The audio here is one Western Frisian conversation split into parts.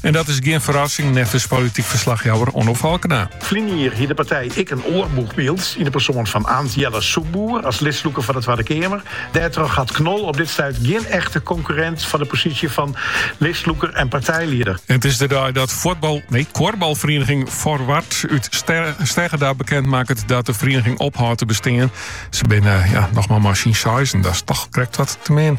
En dat is gjin ferrassing, neffens polityk ferslachjouwer Onno Falkena. Ferline jier hie de partij ek in oar boechbyld yn de persoan fan Aant Jelle Soepboer as listlûker foar de Twadde Keamer. Dêrtroch hat Knol op dit stuit gjin echte konkurrint foar de posysje fan listlûker en partijlieder. En it is de dei dat fuotbal, nee, kuorbalferieniging Forward út Steggerda bekend makket dat de ferieniging ophâldt te bestean. Se binne, ja, noch mar mei syn seizen, dat is toch krekt wat te min.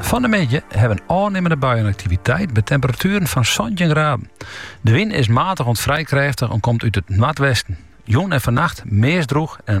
Fan de middei hawwe we in ôfnimmende buienaktiviteit by temperatueren fan santjin graden. De wyn is matich oant frij krêftich en komt út it noardwesten. Jûn en fannacht meast drûch en